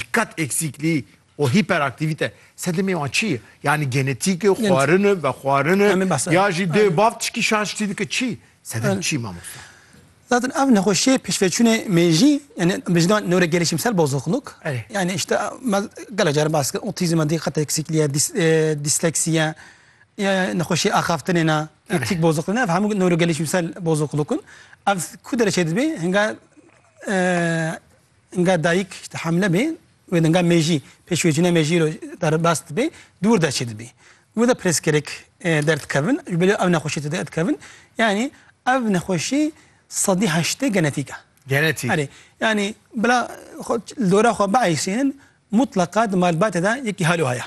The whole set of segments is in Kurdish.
dikat eksikliği o hiperaktivite sedemê wan çi ye? Yanî genetîk e, xwarin e, vexwarin e ya jî dê bav tişkî şaştî dike çi? Sedem çi mamosta? Zaten ev nexweşiyê pêşveçûnê mêjî yani bi jina newrogelişîmsel bozukluk yani işte me gelek caran bas kir otîzm e, dîqet eksikliği ye, dîsleksî ye ya nexweşiyê axaftinê ne, optîk bozukluk ne ev hemû newrogelişîmsel bozukluk in. Ev ku dereceyê dibê hinga Nga dayik işte hamle bê wê de nga mêjî pêş wê cîna mêjî ro derbas dibê dûr de çê dibê. Wê de pirsgirêk derdikevin ji bilê ev nexweşî tu derdikevin yanî ev nexweşî sedî heştê genetîk e. Genetîk. Erê yanî bila li dora xwe biaysînin mutleqa di malbatê de yekî hal û haya.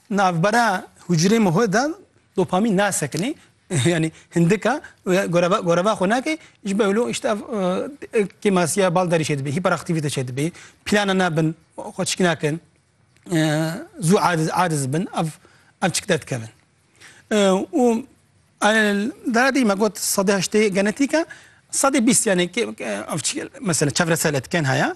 Navbera hucrê muhê de dopamîn nasekinê, yanî hindika goreva goreva xwe nake, ji ber wilo îşte ev kêmasiya bal derî çêdibê, hîperaktîvîte çêdibê, plana nabin xwe çik nakin, zû adiz adiz bin ev ev çik derdikevin. Û dara dî me got sedî heştê genetîk e, sedî bîst yanî kê ev çik mesela çevresel etken heye.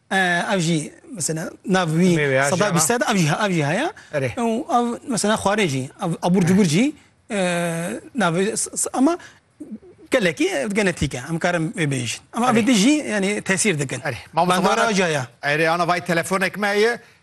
Ev jî mesela nav wî seda bîst sed ev jî ev jî heye û ev mesela xwarê jî ev abûr cubur jî navê ema gelekî ev genetîk e em karin wê bêjin ema ev êdî jî yanî tesîr dikin bandora caya. Erê ana vay telefonek me heye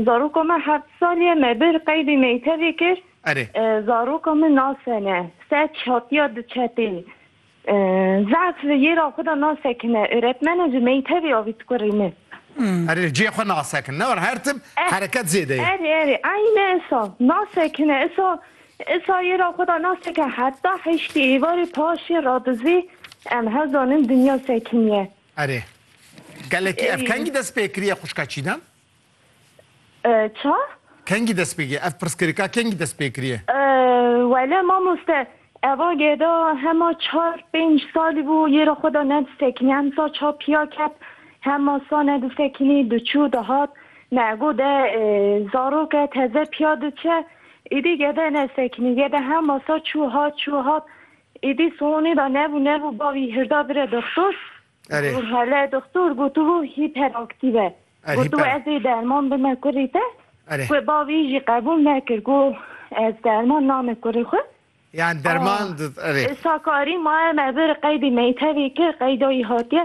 Zaroka me heft salî ye me bir qeydî meytevê kir. Erê. Zaroka min nasene se çatiya di çepê zehf li yêra xwe de nasekine. Öretmene ji meytevê avî tu kurê min. Erê li cihê xwe nasekin ne were her tim hereket zêde ye. Erê erê eyne isa nasekine isa isa yêra xwe de naseke heta heştê êvarê paşê radizê em hezanin dinya sekiniye. Erê. Gelekî ev kengî dest pê kiriye xwişka Çîdem? Ça? Kengî dest pê kiriye? Ev pirsgirêka kengî dest pê kiriye? Wele mamoste eva gêda hema çar pênc salî bû yê re xwe de nedisekînî. Em sa ça pîya ket hema sa nedisekînî diçû dihat ne go de zarok e teze pîya diçe. Îdî gede nesekînî gede hema sa çû hat çû hat Êdî sonê da nebû nebû bavî hirda bire doktor. Erê. Got hele doktor got tu hiperaktiv e. Er Got hiper. ez ê derman bime kurê te. Erê. Wê bavî jî qebûl nekir got ez derman name kurê xwe. Yan derman erê. Sakarî maye me bir qeydê meytevê kir qeyda wî hatiye.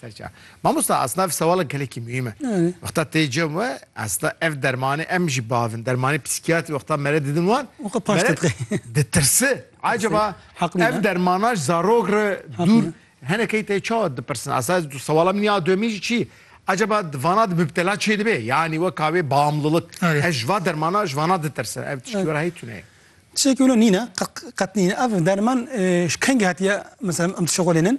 Serçe. Mamosta aslında ev sevala gelekî muhîm e. Yani. Wexta tê cem we aslında ev dermanê em jî bavin. Dermanê psîkiyatrî wexta mere didin wan. Wexta paş mere tepqe. Ditirsi. Acaba ev dermana ji zarok re dûr henekê tê çawa dipirsin. Aslında ez sewala min ya duyemîn jî çi? Acaba di vana di mübtela çê dibe? Yani wek avê bağımlılık. Ez ji va dermana ji vana ditirsin. Ev tiştî wera heyî tune ye. Tiştekî wilo nîne, qet nîne. Ev derman ji kengî hatiye mesela em dişexulênin?